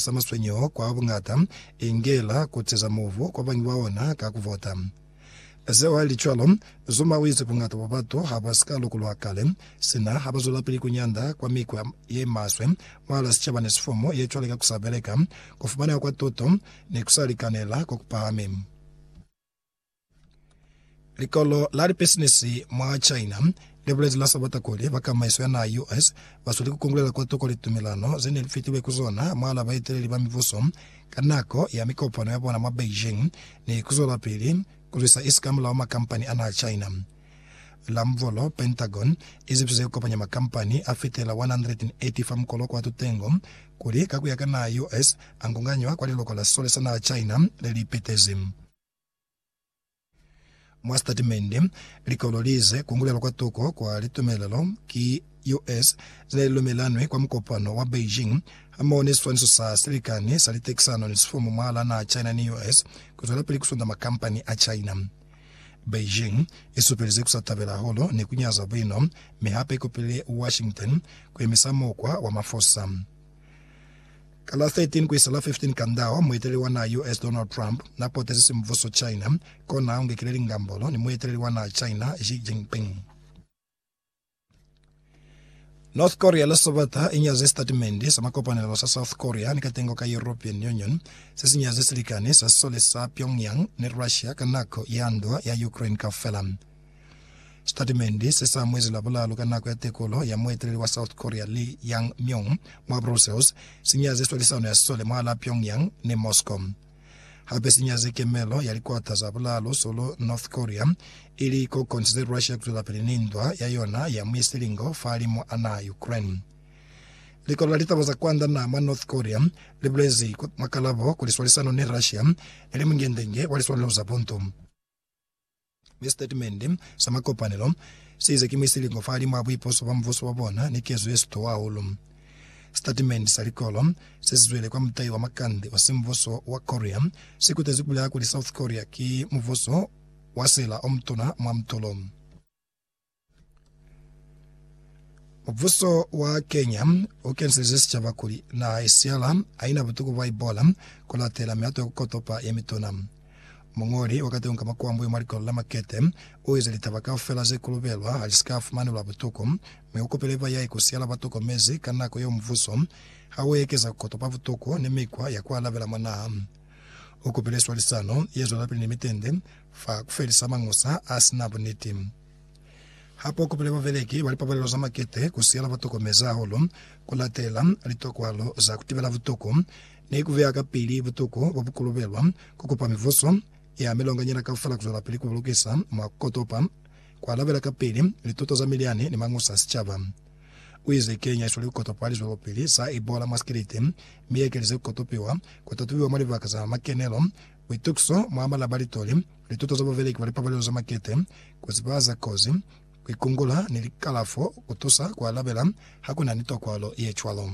sa maswenyeho kwa buñata, inge la kutiza mubu kwa bañwi ba ona ka ku vota. Zeo ha li cwalo, Zuma uize buñata bwa batu ha bwa si ka lukulwa kale, sina ha ba zwelapili ku nyanda kwa mikwa ye maswe mwahala sicaba ni sifomo ye cwale ka ku sa beleka, ku fumaneha kwa tuto, ni ku sa likanela ko ku pahami. Likolo la lipisinisi mwa China li bulezi la Sabata kuli bakamaiso ya naha US ba sweli ku kungulela kwa toko litumelano ze ne li fitilwe ku zona mwahal'a baeteleli ba mibuso ka nako ya mikopano ya bona mwa Beijing ni ku zwelapili ku lwisa isikamulaho makampani a naha China la Mvolo, Pentagon, i zibiso ze kopanya makampani a fitela 180 fa mukolo kwa tutengo kuli, ka ku ya ka naha US, a ngunganywa kwa liloko la sole sa naha China le li petezi. Mwa sitatimende, likolo li ize kungulelo kwa tuko kwa litumelelo ki US ze ne li lumelanwi kwa mukopano wa Beijing hamoho ni siswaniso sa silikani sa litekisano ni sifumu mwahal'a naha China ni US ku zwelapili ku sunda makampani a China. Beijing i supelize ku sa tabela hahulu ni ku nyaza buino, mi hape i kopile Washington ku yemisa mukwa wa mafosa. Ka la 13 ku isa la 15 Kandao, mueteleli wa naha US Donald Trump na potezi simbuso China, kona u ngekile lingambolo ni mueteleli wa naha China Xi Jinping. North Korea la Sabata i nyaze sitatimende sa makopanelo sa South Korea ni katengo ka European Union se si nyaze silikani sa sisole sa Pyongyang ni Russia ka nako ya ndwa ya Ukraine kaufela. Sitatimende se sa mwezi Labulalu ka nako ya tekolo ya mueteleli wa South Korea Lee Yang-myung mwa Brussels si nyaze swalisano ya sisole mwalaa Pyongyang ni Moscow. Hape se nyaze kemelo ya likwata za bulalo solo North Korea, ili ko kontile Russia kuzwelapili ni ndwa ya yona ya mwi silingo fahalimu a naha Ukraine. Likolo la litaba za kwanda naha mwa North Korea li bulezi mwa kalabo kuli swalisano ni Russia ili mungendenge wa liswanelo za buntu. Mi sitatimende sa makopanelo seize ki muisilingo fahalimwaa buipuso bwa mubuso bwa bona ni kezo yesitowa hahulu. Sitatimende sa likolo sesizwele kwa mutai wa makande osi mubuso wa Korea sikutezi kubulela kuli South Korea ki mubuso wa sela omutuna mwa mutulo. Mubuso wa Kenya u kenselize sicaba kuli naha ya Sierra ha ina butuku bwa Ebola ku latela mihato ya ku kotopa ye mituna. Muñoli wa kateñi ka makuambo yo mwa likolo la Makete u ize litaba kaufela ze kulubelwa ha li si ka fumanelwa butuku, mi u kopile ba yae ku Sierra ba tokomezi ka nako yeo mubuso ha u ekeza ku kotopa butuku ni mikwa ya ku alabela mwa naha. U kopile swalisano ye zwelapili ni mitende fa kufelisa mañusa a si na buniti. Ha po kopile babeleki ba lipapalelo za makete ku siyela ba tokomezi hahulu ku latela litokwalo za ku tibela butuku ni ku beya kapili butuku bo bu kolobelwa ku kupa mivuso ya milonganyana kaufela ku zwelapili ku bulukisa mwa ku kotopa, ku alabela kapili lituto za milyani ni mañusa a sicaba. U ize, Kenya i sweli ku kotopa lizwelopili za Ebola mwa sikiliti, mi i ekelize ku kotopiwa ku tatubiwa mwa libaka za makenelo Buitukiso mwa mala ba litoli, lituto za bubeleki bwa lipapalelo za makete, ku ziba za kozi, ku ikungula, ni likalafo ku tusa ku alabela ha ku na ni tokwalo ye cwalo.